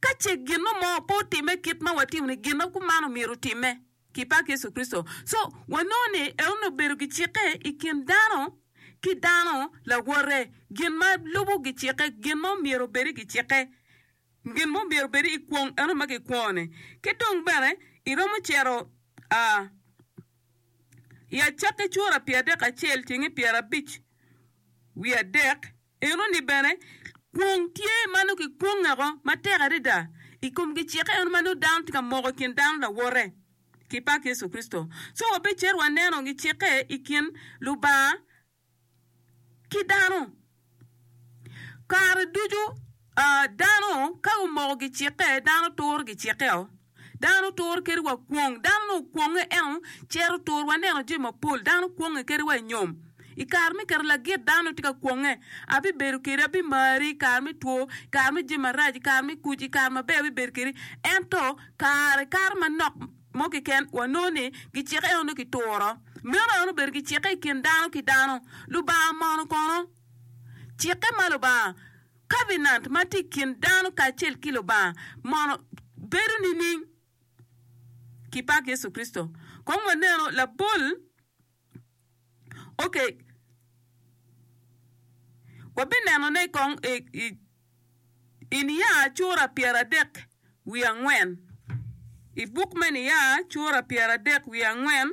Ka ce gino mo pe otimme kit ma watimo ni, gin-na kuman omyero otimme. Kipak Yecu Kricito. Co, wanongo ni en onongo obedo gicikke i kin dano ki dano lawote, gin ma lubo gicikke, gin ma omyero obed i gicikke, gin ma omyero obed i kwong eno ma kikwongo-ni. Ki dong bene iromo cito a i Acakki cura pye adek acel cenge pyer abic wiye adek, Enoni bene, kwong tye ma nongo kikwonge woko matek adada i kom gicikke eno ma nongo dano tye ka moko i kin dano lawote ki pak Yecu Kricito. Co wabicit waneno gicikke i kin Lubanga ki dano. Kare ducu dano ka gumoko gicikke, dano turo gicikkeo. Dano turo kadi wa kwong. Dano nongo okwonge ento cito tur. Waneno jami mapol dano kwonge kadi wa i nyom. I kare me keto lagit dano tye ka kwonge. Abibedo kedi, abimari i kare me two, i kare me jami marac, i kare me kuc, i kare maber abibedo kedi. Ento kare kato manok mo keken wanongo ni gicike eno nongo kituro. Meno aye nongo obedo gicike i kin dano ki dano. Lubanga mono kono? Cikke ma Lubanga. Kabenant ma tye i kin dano kacel ki Lubanga mono bedo nining? Kipak Yecu Kricito, kong wanenu labol oke wabinenone kong i niya cura pyeradek wiye angwen. I buk me Niya cura pyeradek wiye angwen.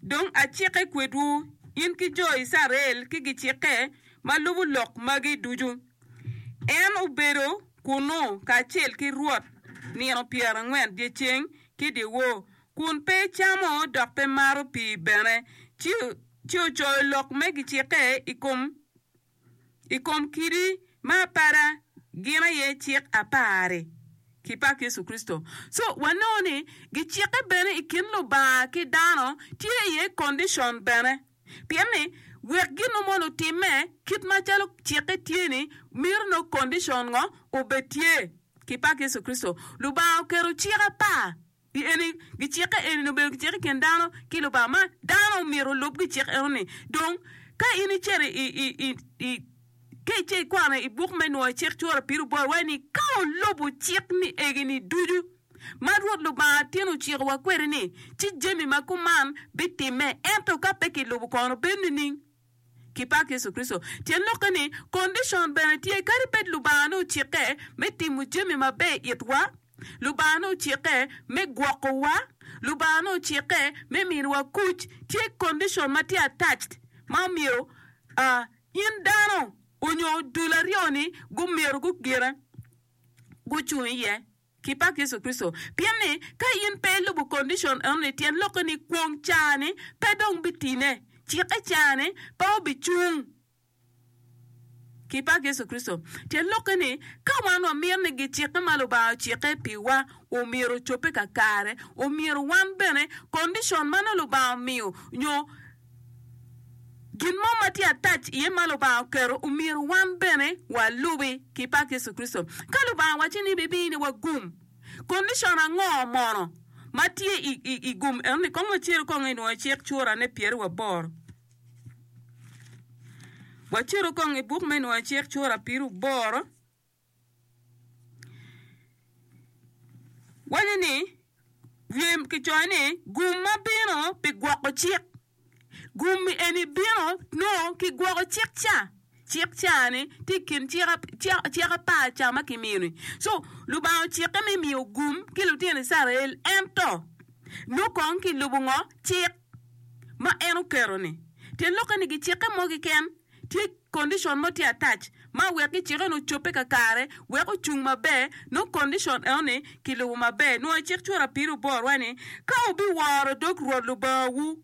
Dong acike kwedwu, in ki jo Icrael ki gicikke ma lubo lok magi ducu. En obedo kunnu kacel ki Rwot nino pyerangwen dyeceng ki dyewor, kun pe camo dok pe mato pii bene, ci ocoyo lok me gicikke i kom i kom kidi me apada gin aye cik apar-ri ki pak Yecu Kricito. Co wanongo ni gicikke bene i kin Lubanga ki dano tye iye condition bene pien ni wek gin mo mono otimme kit macalo cikke tye ni mito nongo condition ngo obed tye. Ki pak Yecu Kricito, Lubanga oketo cik apar. Pien gicikke eni-ni obedo gicik i kin dano ki Lubanga, ma dano omyero olub gicik enoni. Dong, ka in icito ka ice ikwano i buk me Nwoyo Cik cura piri bot waci ni, Ka wulubo cik ni egi-ni ducu ma Rwot Lubanga tin ocikowa kwede-ni, ci jami ma kuman bitimme, ento ka pe kilubo kono bed nining? ki pak Yecu Kricito. Tyen lokke ni, kondicon bene tye. Kadi bed Lubanga nongo cikke me timo jami maber i itwa, Lubanga nongo cikke me gwokowa, Lubanga nongo cikke me miniwa kuc, tye kondicon ma tye attached ma omyero in dano onyo dul aryo-ni gumyero gugine gucung iye. Kipak Yecu Kricito, pien ni ka in pe ilubo kondicon enoni tyen lokke ni kwong caa-ni pe dong bitine, cikke caa-ni pe obicung. Kipak Yecu Kricito, tyen lokke ni ka wan wamito ni gicikke ma Lubanga ocikke piwa omyero ocobbe kakare, omyero wan bene kondicon ma nongo Lubanga omiyo nyo, Gin mo ma tye attach iye ma Lubanga oketo omyero wan bene walubi, ki pak Yecu Kricito. Ka Lubanga wacci ni bibino ni wagum, kondicon ango mono ma tye i gum eno-ni? Kong wacir kong i nwoyo cik Cura ne pyeri wa boro. Waciru kong i buk me Nwoyo Cik cura piru boro. Waco ni, lwem kicoyo ni gum ma bino pi gwoko cik. Gum eni bino nongo ki gwoko cik ca. Cik ca-ni tye i kin cik apar ca ma kimiyo-ni. Co Lubanga ocikke me miyo gum ki lutino Icrael ento nongo kong kilubo ngo? Cik. ma en oketo ni, tyen lokke ni gicikke mogi ken, tye condition mo tye attach ma wek gicikke ni ocobbe kakare wek ocung maber nongo condition eno ni kilubo maber nongo i cik cura piri oboro wa ni ka wubi woro dog Rwot Lubanga wu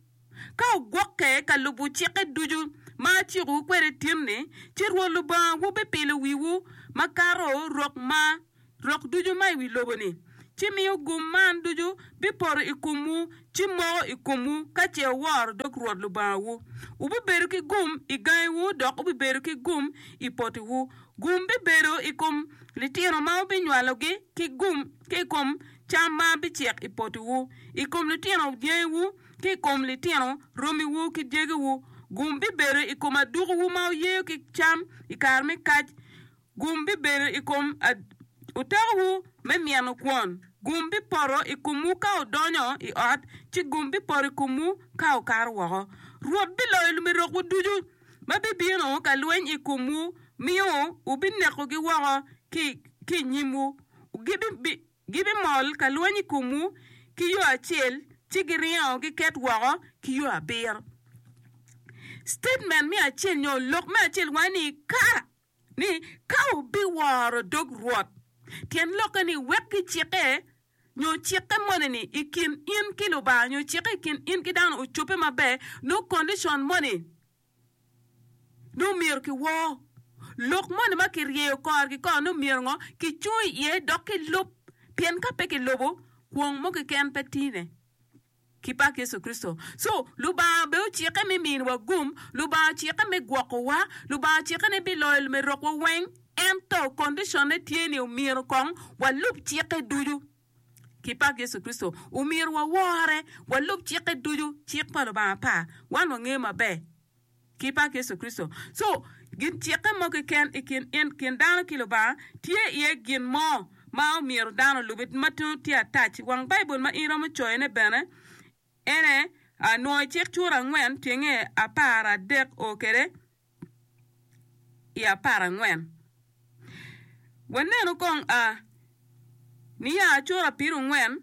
ka wugwokke ka lubo cikke ducu ma aciko wu kwede tin ni ci Rwot Lubanga wu bipilo wiwu makato rok ma rok ducu ma i wi lobo-ni, ci miyo gum man ducu bipoto i komwu, ci moko i komwu ka ce wuworo dog Rwot Lubangawu. Wubibedo ki gum i gangiwu dok wubibedo ki gum i potiwu. Gum bibedo i kom litino ma wubinywalogi ki gum ki i kom cam ma bicek i potiwu. I kom litino dyangiwu ki i kom litino romiwu ki dyegiwu, gum bibedo i kom adukuwu ma wuyeyo ki cam i kare me kac. Gum bibedo i kom otakowu me mino kwon. Gum bipoto i komwu ka wudonyo i ot, ci gum bipoto i komwu ka wukato woko. Rwot biloyo lumerokwu ducu ma bibino ka lweny i komwu, miyo wubinekogi woko ki i nyimwu. Gibimol ka lweny i komwu ki yo acel, ci giringo giket woko ki yo abiro. Citatement me acel nyo lok me acel waco ni, Ka! ni, Ka wubiworo dog Rwot, tyen lokke ni wek gicikke nyo cikke moni-ni i kin in ki Lubanga nyo cikke i kin in ki dano ocobbe maber, nongo kondicon moni nongo myero kiwor. Lok moni ma kiryeyo korgi kor nongo myero ngo? Kicung iye dok kilub, pien ka pe kilubo, kwong mo keken pe tine. ki pak Yecu Kricito. Cu, Lubanga bene ocikke me miniwa gum, Lubanga ocikke me gwokowa, Lubanga ocikke ni biloyo lumerokwa weng, ento kondiconne tye ni omyero kong walub cikke ducu. Ki pak Yecu Kricito, omyero wawore, walub cikke ducu, cik pa Lubanga par, wan wangeyo maber. ki pak Yecu Kricito. Co, gin cikke mo keken i kin in kin dano ki Lubanga, tye iye gin mo ma omyero dano olubi ma twero tye atac. Wang Baibul ma in romo coyone bene ene, Nwo i Cik Cura angwen tyenge apar adek o kede i apar angwen. Wanenu kong a niya cura pirungwen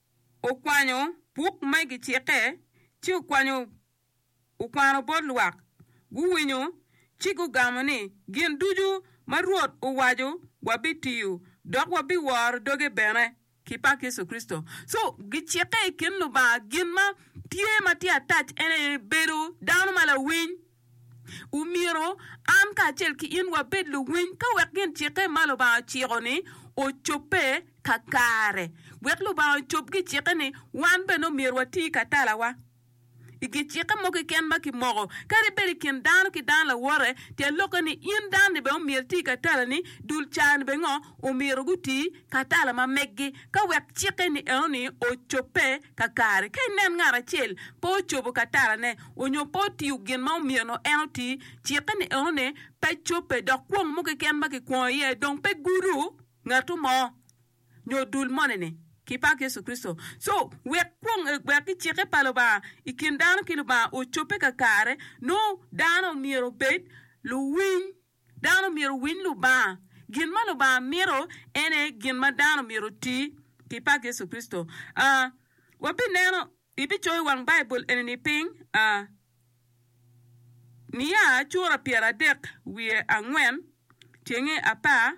okwanyo buk ma i gicikke ci okwanyo okwano bot lwak, guwinyo ci gugamo ni, Gin ducu ma Rwot owaco wabitiyo, dok wabiworo doge bene ki pak Yecu Kricito. So, gicikke i kin Lubanga gin ma tye ma tye attach en aye bedo dano ma lawiny. Omyero an kacel ki in wabed luwiny ka wek gin cikke ma Lubanga ociko-ni ocobbe kakare. Wek Lubanga ocob gicikke-ni, wan bene omyero wati ka talawa. I gicikke mo keken ma kimoko, kadi bed i kin dano ki dano lawote, tye lokke ni in dano-ni bene omyero iti ka talani, dul ca-ni bene ngo omyero guti ka tala ma meggi ka wek cikke-ni enoni ocobbe. Kakare, ka inen ngat acel pe ocobo katarane onyo pe otiyo gin ma omyeno en oti, cikke ni enoni pe cobbe, dok kwong mo keken ma kikwongo iye dong pe gudo ngatu mo nyo dul moni-ni. Ki pak Yecu Kricito! Co, wek kwong, wek ki cikke pa Lubanga i kin dano ki Lubanga ocobbe kakare, nongo dano myero obed luwiny Dano myero owiny Lubanga. Gin ma Lubanga mito en aye gin ma dano myero oti pi pak Yecu Kricito. A Wabineno, ibicoyo i wang Baibul eni-ni piny. A Mia sura pyeradek wiye angwen cenge apar.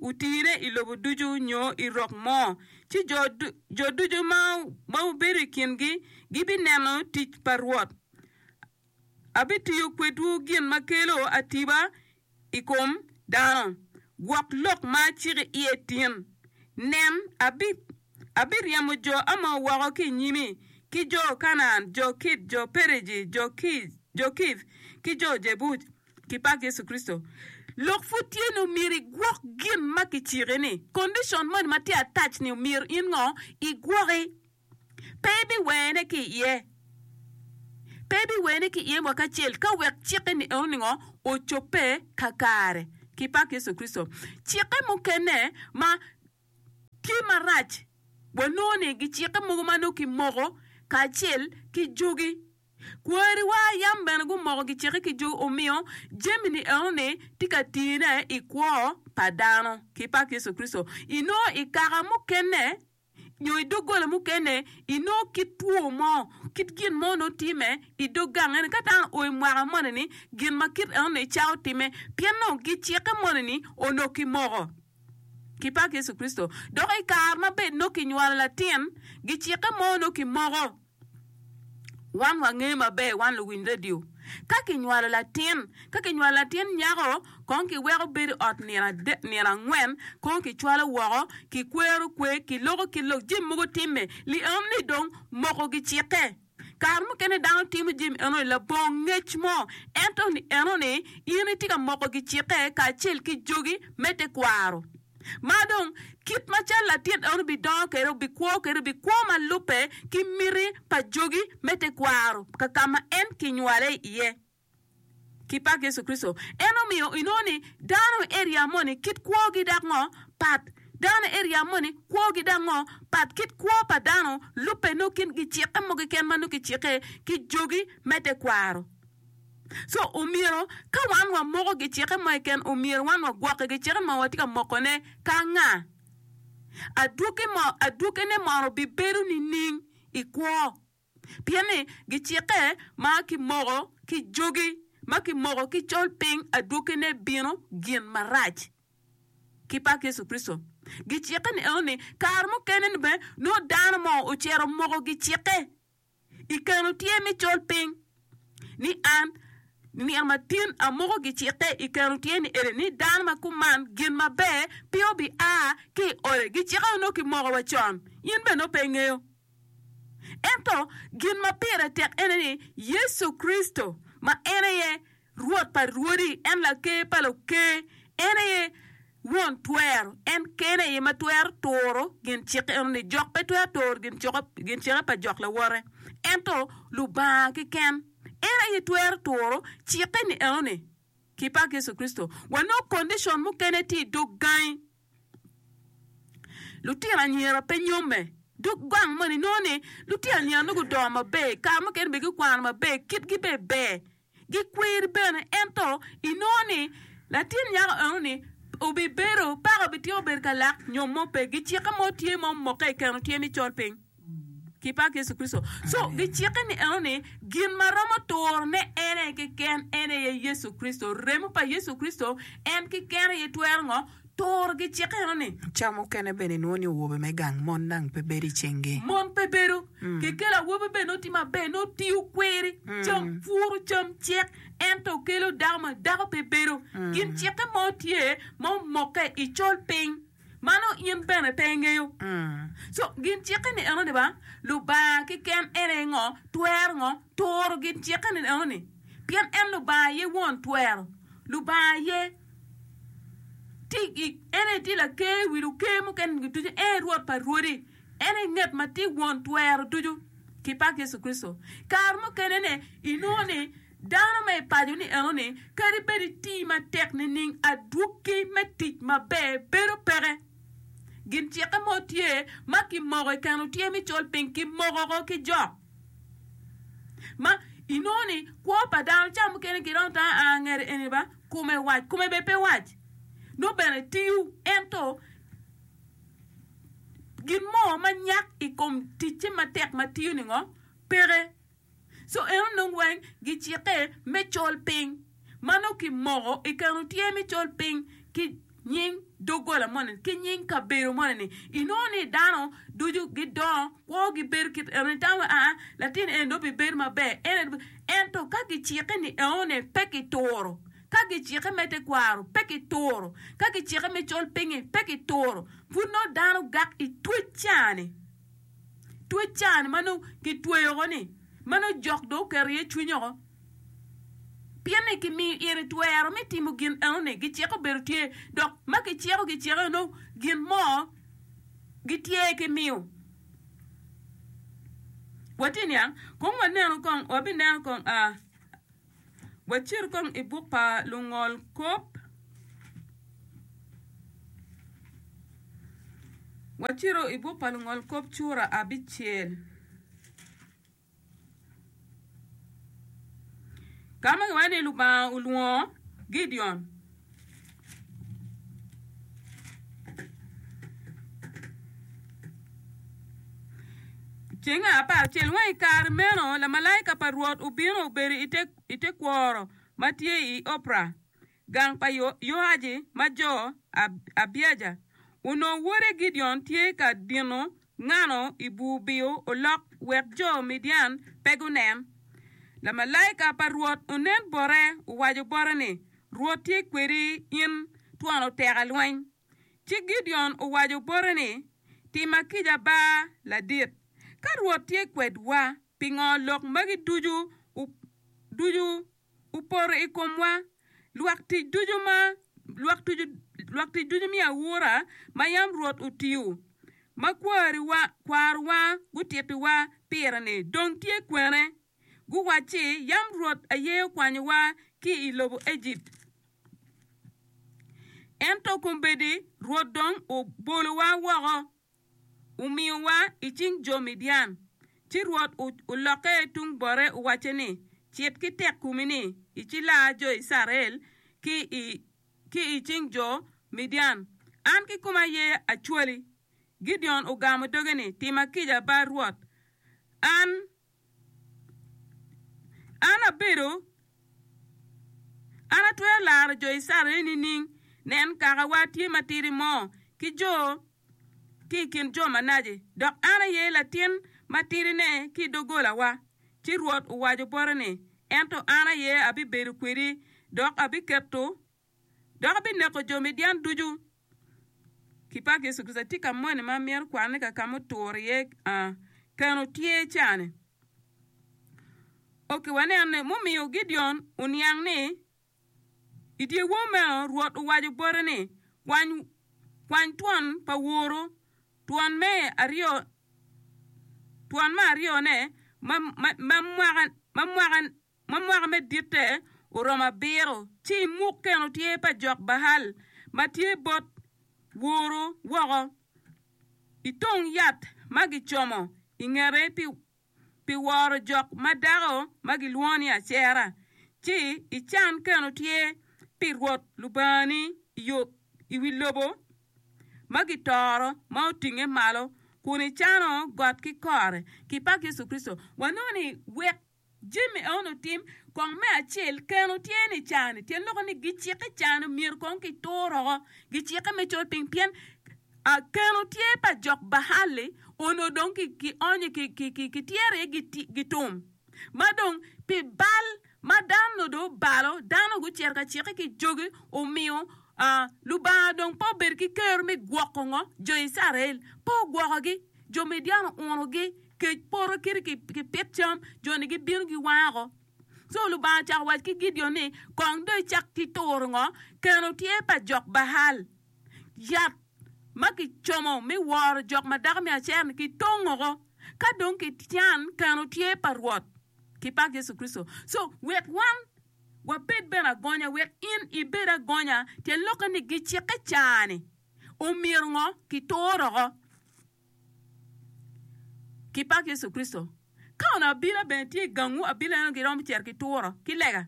Wutire i lobo ducu nyo i rok mo, ci jo ducu ma wubedo i kingi gibineno tic pa Rwot. Abitiyo kwedwu gin ma kelo atiba i kom dano, gwok lok ma aciki iye tin. Nen, abiryemo jo Amor woko ki i nyimi, ki jo Kanaan, jo Kit, jo Periji, jo Kiv, ki jo Jebuc. ki pak Yecu Kricito, lok pud tye ni omyero igwok gin ma kiciki ni. Kondicon moni ma tye attach ni omyero in ngo? Igwoki. Pe ibiwene ki iye. Pe ibiwene ki iye mwaki acel ka wek cik eni eno ni ngo? Ocobbe ka kare. Ki pak Yecu Kricito. Cikke mukene ma tye marac, wanongo ni gicikke mogo ma nongo kimoko kacel ki jogi. Kwariwa yam bene gumoko giceke ki jo omiyo jami-ni enoni tye ka tine i kwo pa dano. Ki pak Yecu Kricito, inongo i kaka mukene nyo i doggola mukene inongo kit two mo, kit gin mo nongo tye me i dog gang eni. Ka dano oo i mwaka moni-ni, gin ma kit enoni icako timme pien onongo giceke moni-ni onongo kimoko. Ki pak Yecu Kricito! Dok i kare ma bed nongo kinywalo latin, giceke mo nongo kimoko. Wan wangeyo maber, wan luwiny redio, ka kinywalo latin, ka kinywalo latin nyako, kong kiweko bedo i ot nino adek, nino angwen, kong kicwalo woko, kikwero kwe, kiloko ki lok, jami mogo timme. Li eno ni dong moko gicikke. Kare mukene dano timo jami eno ni labongo ngec mo, ento ni eno ni in itye ka moko gicikke kacel ki jogi me tekwaro. Ma dong, kit macal latin eno bidongo kede, obikwo kede, obikwo ma lubbe ki miti pa jogi me tekwaro ka ka ma en kinywale iye. Ki pak Yecu Kricito! En omiyo inongo ni dano me eria moni kit kwogi dok ngo pat. Dano me eria moni kwogi dok ngo pat. Kit kwo pa dano lubbe nongo kin gicikke mogo keken ma nongo kicikke ki jogi me tekwaro. So omyero ka wan wamoko gicike mo keken, omyero wan wagwokke gicike ma watye ka mokone ka anga? Adwoki mo, adwokine mono bibedo nining i kwo? Pien ni gicike ma kimoko ki jogi, ma kimoko ki col piny, adwokine bino gin marac. Ki pak Yecu Kricito. Gicike ni eno ni kare mukene ni bene nongo dano mo ocito omoko gicike. I keno tye ni col piny ni an nino matin amuko gicikke i keno tye ni eni ni dano ma kuman gin maber pingo bi a ki i ode gicikke onongo ki moko wa con in bene nongo pe ingeyo ento gin ma pire tek ene ni yecu Kricito ma en aye Rwot pa rwodi, en Laker pa luker, en aye Won twero, en kene aye ma twero turo gin cik eno-ni. Jok pe twero turo gin ciko, gin cike pa jok lawote, ento Lubanga keken, en aye twero turo cike-ni eno-ni. Ki pak Yecu Kricito, wanongo condition mukene tye i dog gangi. Lutino anyira pe nyomme. Dog gang moni inongo ni lutino anyira-ni gudongo maber, kare mukene bene gikwano maber, kitgi bene ber. gikweri bene. Ento inongo ni latin nyako eno-ni obibedo, paka obityeko bedo ka lak nyo mo pe. Gicikke mo tye ma omokke i keno tye ni col piny ki pak Yecu Kricito. So, gicikke ni eno ni gin ma romo turone en aye keken, en aye Yecu Kricito. Remo pa Yecu Kricito en keken aye twero ngo? Tur gi cik enoni. Ca mukene bene inwongo ni owobe me gang mon dang pe bedo i cingi. Mon pe bedo. Kekelo awobi bene nongo tye maber, nongo tiyo kweri, cam puru, cam cek, ento okelo dako ma dako pe bedo. Gin cikke mo tye ma omokke i col piny, mano in bene pe ingeyo. Co gin cikke ni enoni ba, Lubanga keken en aye ngo, twero ngo, turo gin cikke ni enoni. Pien en Lubanga aye won twero, Lubanga aye. En aye tye Laker i wi luker mukene-ni ducu, en aye Rwot pa rwodi, en aye ngat ma tye Won twero ducu. Kipak Yecu Kricito! Kare mukene-ni inongo ni dano ma i paco-ni eno-ni kadi bed iti matek nining, adwogi me tic maber bedo peke. Gin cikke mo tye ma kimoko i keno tyer me col piny, kimoko woko ki jok ma inongo ni kwo pa dano ca mukene giromo tamo aa ngete eni ba. Kome wac, kome bene pe wac, nongo bene tiyo, ento gin mo ma nyak i kom ticce matek ma tiyo-ni ngo? Peke. Co eno nongo weng gicikke me col piny, ma nongo kimoko i keno tyer me col piny ki. nying doggola moni ki nying kabedo moni-ni, inongo ni dano ducu gidongo, kwogi bedo kit enoni. Tam wai, aa, latin eni dong bibedo maber, en aye bibedo. Ento ka gicikke ni eone, pe kituro. Ka gicikke me tekwaro, pe kituro. Ka gicikke me col pingngi, pe kituro. Pud nongo dano gak i twec caa-ni. Twec caa-ni ma nongo kitweyo oko-ni, ma nongo jok dong oketo iye cwiny oko. Pien ni kimiyo ire twero me timo gin enoni, giciko bedo tye, dok ma giciko giciko eno gin mo gitye ki miyo. Watye niang, kong wanenu kong, wabineno kong, a, wacit kong i buk pa lungol kop, wacito i buk pa lungol kop cura abicel. Ka ma giwaco ni Lubanga olwongo Gideon, i cenge apar cel wang i kare meno lamalaika pa Rwot obino obedo i te kworo ma tye i Opra. Gang pa Yoaci ma jo Abieja onongo wode Gideon tye ka dino ngano i bur biyo olok wek jo Midian pe gunen. Lamalaika pa Rwot onen bote owaco bote ni, Rwot tye kwedi in twon oteka lweny. Ci Gideon owaco bote ni, Timma kica ba ladit. Ka Rwot tye kwedwa, pingo lok magi ducu? opoto i komwa. Lwak tic ducu ma lwak tic lwak tic ducu miyo aura ma yam Rwot otiyo ma kwariwa kwarowa gutittiwa pire-ni dong tye kwene? Guwacci, Yam Rwot aye okwanyowa ki i lobo Ejipt, ento kombeddi Rwot dong obolowa woko. omiyowa i cing jo Midian. Ci Rwot olokke tung bote owacce ni, 'Cit ki tek komi-ni, icilaa jo Icrael ki i cing jo Midian. An kikoma aye acwali. Gideon ogamo doge ni, 'Tima kica, ba Rwot. An An abedo, an atwero laro jo Icrael nining? Nen, kakawa tye matidi mo ki jo ki i kin jo manaci, dok an aye latin matidine ki i doggolawa. Ci Rwot owaco bote ni, Ento an aye abibedo kwedi, dok abiketo dok ebineko jo Midian ducu. Ki paki Yecu Kricito, atye ka moni ma amyero kwanne ka ka ma otur iye a keno tye cani. Ok, wanen ni mumiyo Gideon oniang ni i dyewor meno Rwot owaco bote ni, Kwany, kwany twon pa woru, twon me aryo, twon me aryo ne ma, ma, ma mwaka, ma mwaka. ma mwaka me ditte oromo abiro, ci imuk keno tyer pa jok Baal ma tye bot woru woko i tong yat ma gicomo i ngete pi woro jok ma dako ma gilwongo ni Acera, ci ican keno tyer pi Rwot Lubangani i wi lobo ma gitoro ma otinge malo, kun icano got ki kore. Jami eni otim kong me acel, keno tye ni cani tyen loko ni gicikke cani myero kong ki tur oko gicikke me col piny pien keno tye pa jok Bahalli onongo dong ki onyo ki tyero aye gi tum ma dong pi bal ma dano onongo dong obalo dano gucito ka cikke ki jogi omiyo Lubanga dong pe obedo ki kero me gwoko ngo? Jo Icrael pe ogwokogi. Jo Midian ounogi kec poto kit ki pit cam, joni gibino giwako. Co Lubanga ocako wac ki Gideon ni, Kong dong icak ki turo ngo? Keno tye pa jok Baal. Yat ma kicomo me woro jok ma dako me Acer-ni kitongoko. Ka dong kican, keno tye pa Rwot ki pa Yecu Kricito. Co wek wan wabed bene agonya, wek in ibed agonya, pien lokke ni gicikke car-ni. omyero ngo kitur oko ki pak Yecu Kricito. Ka onongo abila bene tye i gangwu, abila eno giromo cito ki turo ki lega.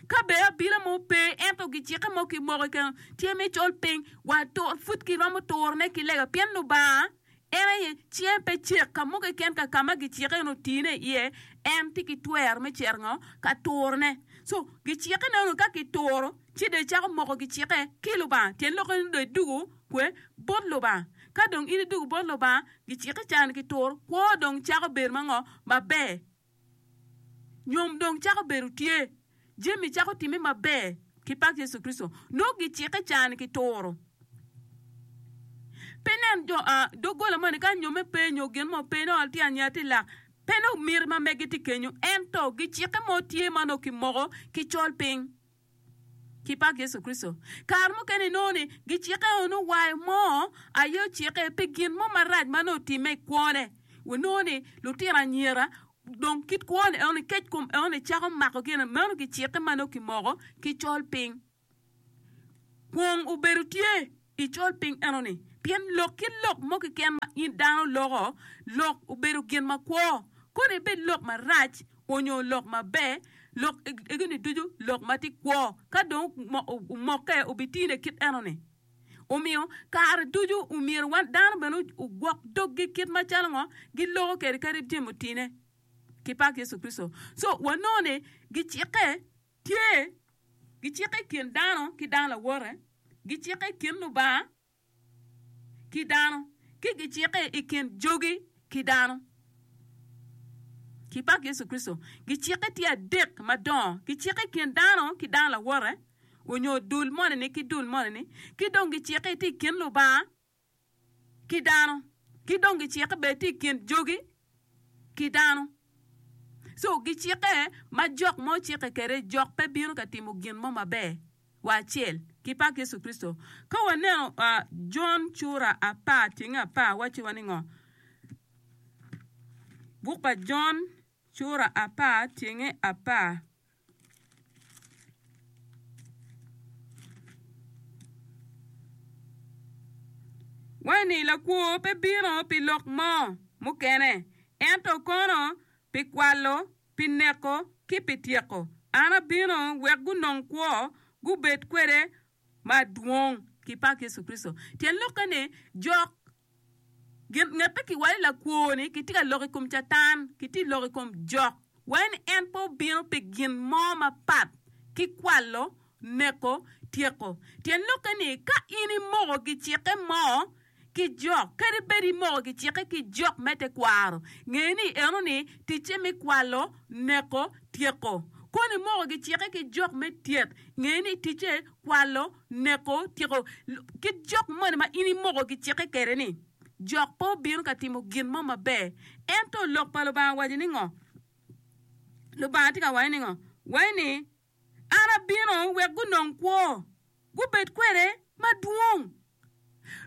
Ka bene abila mo pe ento gicikke mo kimoko keken tye me col piny, wa tur pud giromo turone ki lega pien Lubanga En aye cinge pe cek ka mo keken ka ka ma gicike nongo tine iye, en tye ki twero me cito ngo? Ka turone. So, gicike nongo ka kituro ci dong icako moko gicike ki Lubanga. Tyen lokke ni dong idwogo kwe? Bot Lubanga. Ka dong in idwogo bot Lubanga, gicike ca ni kituro, kwo dong cako bedo ma ngo? Maber. Nyom dong cako bedo tye. Jami cako timme maber ki pak Yecu Kricito. Nongo gicikke cani ki turo. Pe nen jo a doggola moni ka nyomme pe nyo gin mo pe nongo tye anya tye lak. Pe nongo miti ma megi tye kenyo ento gicikke mo tye ma nongo kimoko ki col piny. ki pak Yecu Kricito. Kare mukene inongo ni gicikke o nongo wa mo aye ocikke pi gin mo marac ma nongo otimme i kwone. Wanongo ni lutino anyira dong kit kwo ni eno ni kec kom eno ni cako mako gin ni meno gicikke ma nongo kimoko ki col piny. Kwong obedo tye Icol piny enoni, pien lok ki lok mo keken ma in dano loko, lok obedo gin makwo, kono ebed lok marac onyo lok maber, lok egini ducu lok ma tye kwo, ka dong omokke obitine kit enoni. Omiyo, kare ducu omyero wan dano bene ogwok doggi kit macalo ngo giloko kede kadi jami otine ki pak Yecu Kricito. So, wanongo ni gicikke. Tye, gicikke i kin dano ki dano lawote, gicikke i kin Lubanga ki dano, ki gicikke i kin jogi ki dano. Ki pak Yecu Kricito, gicikke tye adek madongo, gicikke i kin dano ki dano lawote, onyo dul moni-ni ki dul moni-ni, ki dong gicikke tye i kin Lubanga ki dano, ki dong gicikke bed tye i kin jogi ki dano. So gicikke ma jok mo cikke kwede, jok pe bino ka timo gin mo maber wa acel ki pak Yecu Kricito. Ka waneno Jon cura apar tyeng apar wacci wa ningo? Buk pa Jon cura apar tyenge apar. Wai-ni lakwo pe bino pi lok mo mukene, ento kono pi kwalo, pi neko, ki pi tyeko. An abino wek gunong kwo, gubed kwede madwong ki pak Yecu Kricito. Tyen lokke ni, jok gin ngette ki wai lakwo ni ki tye ka lok i kom Catan, ki tye lok i kom jok wai ni en pe obino pi gin mo mapat ki kwalo, neko, tyeko. Tyen lokke ni, ka in imoko gicikke mo, ki jok kadi bed imoko kicike ki jok me tekwaro, nge ni eno ni ticce me kwalo, neko, tyeko. Kono imoko kicike ki jok me tyet, nge ni ticce kwalo, neko, tyeko. Ki jok moni ma in imoko kicike kede ni jok pe obino ka timo gin mo maber. Ento Lok pa Lubanga waco ni ngo? Lubanga tye ka waco ni ngo? Waco ni. An abino wek gunong kwo, gubed kwede madwong.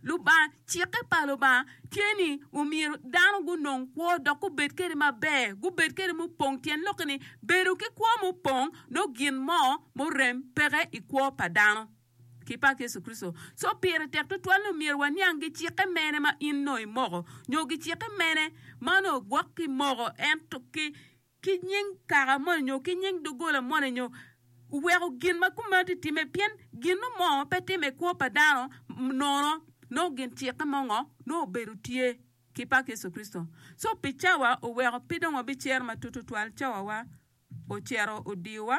Lubanga, cikke pa Lubanga tye ni omyero dano gunong kwo dok gubed kwede maber, gubed kwede mupong, tyen lokke ni bedo ki kwo mupong nongo gin mo murem peke i kwo pa dano ki pa Yecu Kricito. Co pire tek tutwal ni omyero waniang gicikke mene ma in nongo imoko nyo gicikke mene ma nongo gwok kimoko ento ki ki nying kaka moni nyo ki nying doggola moni nyo weko gin ma kumeno ti timme, pien ginno mo pe timme i kwo pa dano nono nongo gin cikke mo ngo nongo obedo tye ki pak Yecu Kricito. Co pi cawa oweko pe dong wabicer matut tutwal cawa wa ocito odiyo wa.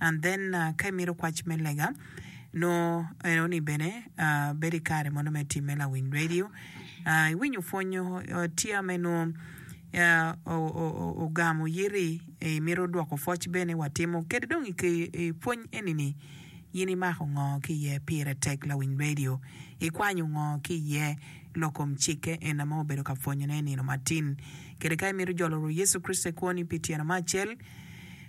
and then ka imito kwac me lega nongo eno ni bene bedo i kare mono me time lawiny radio iwinyo pwony tye ame nongo ogamo yiti imito dwoko pwoc bene watimo kadi dong ipwony eni ni in imako ngo ki iye pire tek lawiny radio ikwanyo ngo ki iye lok kom cikke en ame obedo ka pwonyone i nino matin kadi ka imito jolo rwot Yecu Kricito i kwoni pi tyeno me acel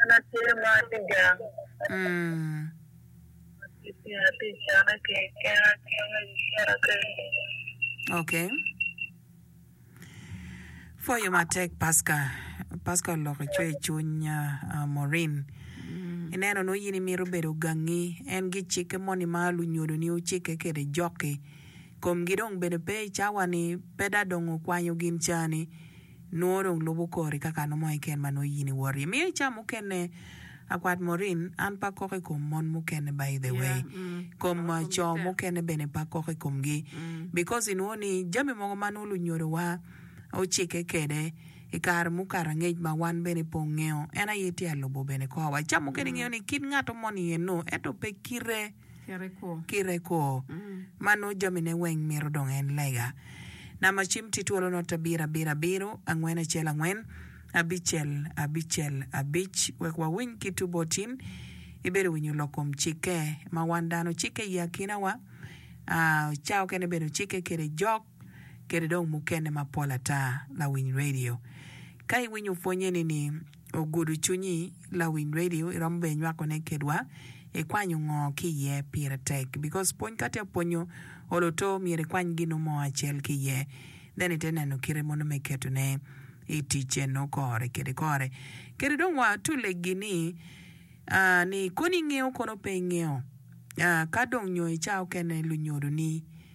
An atye ma atye gang. Atye ka canne keken akene i kicaa keken. Ok. Pwoyo matek paska. Paska oloko cwer i cwiny Morin. Ineno nongo in imito bedo gangi en gicikke moni ma lunyodoni ocikke kwede jokki. Komgi dong bene pe i cawa ni pe dong okwanyo gin cani. Nwo dong lubo kori ka kano mo iken ma nwo yin iwot iye. Miyo ica mukene akwat Maureen an pe akoko ikom mon mukene by the way kom co mukene bene pe akoko ikom gi because inwo ni jami mogo ma nwo lunyodo wa ocike kede ikare mukato angec ma wan bene pe ongeyo en aye tye alubo bene kor wa ica mukene ingeyo ni kit ngato moni eno ento pe kite kite kwo, ma nongo jamine weng mito dong en lega. Namba cim tye twolo not abiro abiro abiro, angwen acel angwen, abicel abicel abic. Wek wawiny kit obotin ibedo winyo lok kom cikke ma wan dano ocikke i akinawa, ca okene bene ocikke kede jok kede dong mukene mapol ata. Lawiny Radio ka iwinyo pwonye ni ni. Ogudo cwinyi, lawiny radio iromo bene inywako ne kedwa ikwanyo ngo ki iye pire tek because pwony ka tye apwonyo olo to myero ikwany gino mo acel ki iye then ite neno kite mono me keto ne itic eno kore kede kore kede dong wa to legi ni aah ni kono ingeyo kono pe ingeyo aah ka dong nyo ica okene lunyodo ni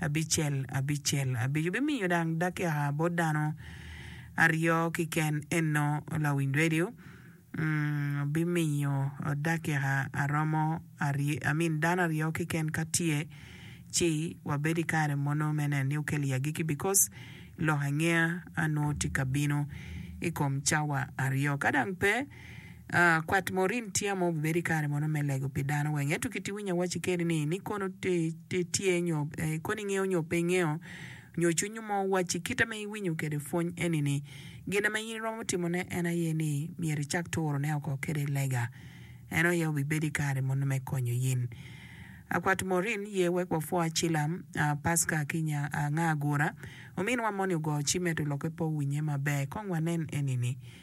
abicel abicel. Abico bimiyo dang dakika bot dano aryo kiken eno lawiny radio bimiyo dakika aromo amin dano aryo kiken ka tye ci wabed i kare mono me neno ni okel i agiki bikos lok angeya anwo tye ka bino i kom cawa aryo ka dang pe Kwat Maureen tye mo obibedo i kare mono me lego pi dano weng. Ento kit iwinyo awacci kene ni, ni kono tye nyo kono ingeyo nyo pe ingeyo nyo cwiny mo wacci kite ma iwinyo kwede pwony eni-ni, gin ma in iromo timone en aye ni myero icak turone oko kede lega. En aye obibedo i kare mono me konyo in. Kwat Maureen ye wek wapwo Acilam, Pasca ki nya anga agura. Ominwa moni ogo cim ento lokke pe owinye maber. Kong wanen eni-ni.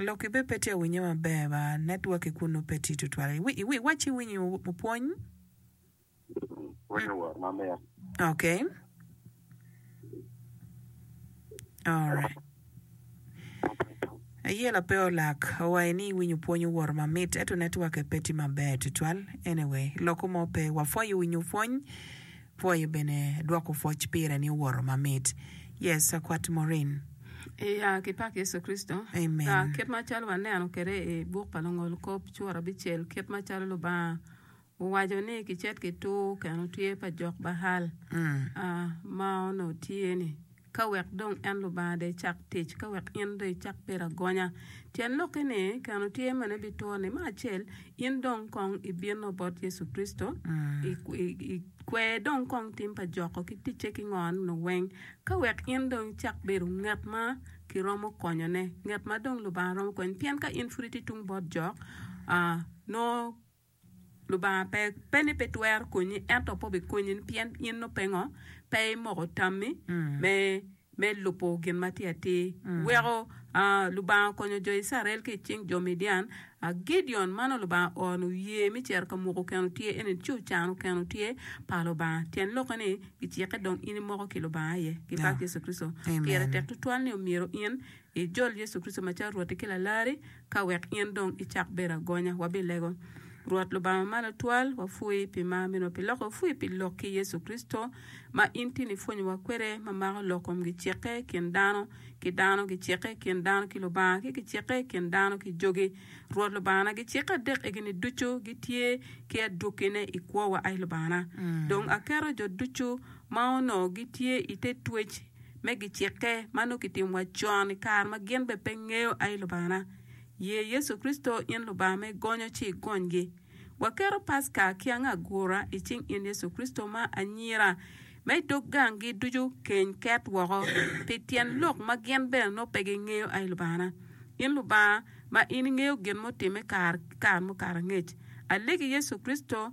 Lok i be pe tye winye maber ba network i kunu pe tye tutwal iwac ci iwiny pwony. Okay alright. Aye la pe olak owaye ni iwinyo pwony oworo mamit eto networke pe tye maber tutwal anyway loko mo pe wapwoyo winyo pwony pwoyo bene dwoko pwoc pire ni oworo mamit yes akwat Morin. Iya ki pak Yecu Kricito. Amen. Aa, kit macalo waneno kwede i buk pa Lungolkop, cura bicel kit macalo Lubanga Owaco ni kicet ki tur keno tye pa jok Baal ma onongo tye ni ka wek dong en Lubanga dong ecak tic, ka wek in dong icak bedo agonya. Tyen lokke ni keno tye meno ebituro ni me acel in dong kong ibino bot Yecu Kricito ikwer dong kong tim pa joko ki ticce ki ngo nunu weng ka wek in dong icak bedo ngat ma kiromo konyone ngat ma dong Lubanga romo konyo pien ka in pud itye tung bot jok nongo Lubanga pe, pe ni pe twero konyi, ento pe obikonyi ni pien in nongo pe ngo, pe imoko tammi me, me lubo gin ma tye atir. Weko aa, Lubanga okonyo jo Icrael ki i cing jo Midian. Aa, Gideon ma nongo Lubanga ooro ni oye me cito ka mwoko keno tye, en eni ci ocano keno tye pa Lubanga. Tyen lokke ni, gicikke dong in imoko ki Lubanga aye, ki bak Yecu Kricito. Pire tek tutwal ni omyero in Ijol Yecu Kricito macalo Rwotti ki Lalari, ka wek in dong icak bedo agonya. Wabilego Rwot Lubanga malo twal, wapwoi pi mar meno, pi loko wapwoi pi lok ki Yecu Kricito ma in tin ipwonyowa kwede, ma mako lok kom gicikke kin dano ki dano, gicikke kin dano ki Lubanga, ki gicikke kin dano ki jogi. Rwot Lubangana, gicikke adek egini ducu gitye ki adwogine i kwowa, ai Lubangana. Dong aketo jo ducu ma onongo gitye ite twec, me gicikke ma nongo kitimo wa con i kare ma gin bene pe ngeyo aye Lubangana. Ye Yecu Kricito in Lubanga me gonyo ci igonygi. Waketo Paska ki ango agura i cing in Yecu Kricito ma anyira ma i dog gang gi ducu keny ket woko pi tyen lok ma gin bene nongo pe gingeyo aye Lubangana. In Lubanga ma in ingeyo gin mutimmi kare ki kare mukato angec. Alegi Yecu Kricito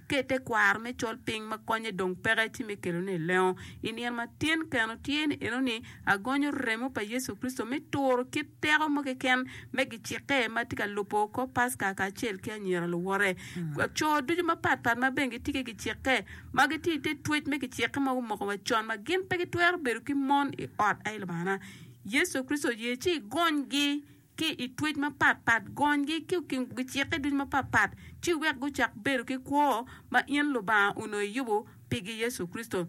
Ket tekwaro me col piny ma konye dong peke ci me kelone i lengo. I nino ma tyen keno tye ni enoni, agonyo remo pa Yecu Kricito me turo kit teko mo keken me gicikke ma tye ka lubo kor Paska kacel ki anyira luwote. Co ducu mapat pat ma bene gitye ki gicikke ma gitye i te twec me gicikke ma gumoko wa con ma gin pe gitwero bedo ki mon i ot aye Lubangana Yecu Kricito oye ci igonygi. ki i twec mapat pat, gonygi ki gicikke ducu mapat pat, ci iwek gucak bedo ki kwo ma in Lubanga onongo iyubo pigi Yecu Kricito.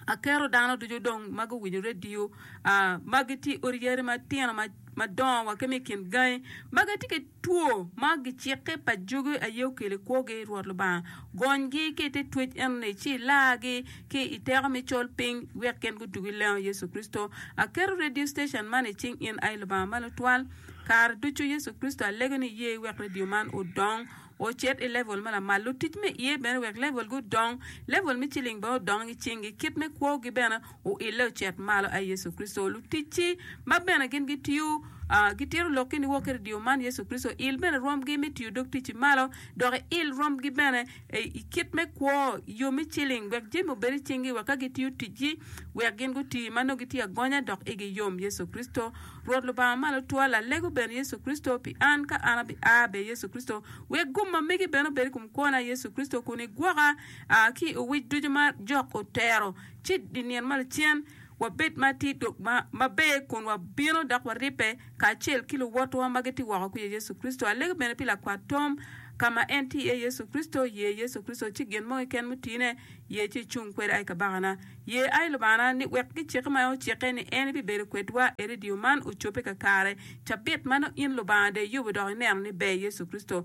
Aketo dano ducu dong ma guwinyo redio, aa, ma gitye i odi yari matino, ma, madongo, wa ki ma i kin gangi, ma gitye ki two ma gicikke pa jogi aye okelo i kwogi, Rwot Lubanga, Gonygi ki i te twec eno-ni, ci ilargi ki i teko me col piny, wek gin gutugi lengo Yecu Kricito. Aketo redio stecen man i cing in, ai Lubanga ma Lutwal. Kare ducu, Yecu Kricito, alego ni iye iwek redio man odong, ocit i level ma lamal. Lutic me iye bene wek levelgi odong, level me ciling bene odong i cinggi, kit me kwogi bene. Oile ocit malo, ai Yecu Kricito. Luticci ma bene gin gitiyo, ah, gitito lokki niwok kede dyeyo man, Yecu Kricito. Il bene rwomgi me tiyo dog ticci malo, dok iil rwomgi bene ei i kit me kwo, i yo me ciling, wek jami obed i cingi, wek ka gitiyo ticgi, wek gin guti ma nongo gitye agonya dok igi yom, Yecu Kricito. Rwot Lubanga malo twa, Lalego bene, Yecu Kricito, pi an, ka an abi a bye, Yecu Kricito, wek gum ma megi bene obed i kom kwona, Yecu Kricito, kun igwoka, ah, ki i owic ducu ma jok otero. ci i nino ma lacen wabed ma tye dog maber kun wabino dok waribbe kacel ki luwotwa ma gitye woko kwija Yecu Kricito. Alego bene pi lakwat Tom, ka ma en tye iye Yecu Kricito, ye Yecu Kricito ci gin mo keken mutine, ye ci icung kwede ai Kabakana. Ye ai Lubangana ni wek gicike ma en ocikke ni en ibibedo kwedwa e redio man ocobbe kakare. Cabit ma nongo in Lubanga dong iyubo dok ineno ni ber Yecu Kricito.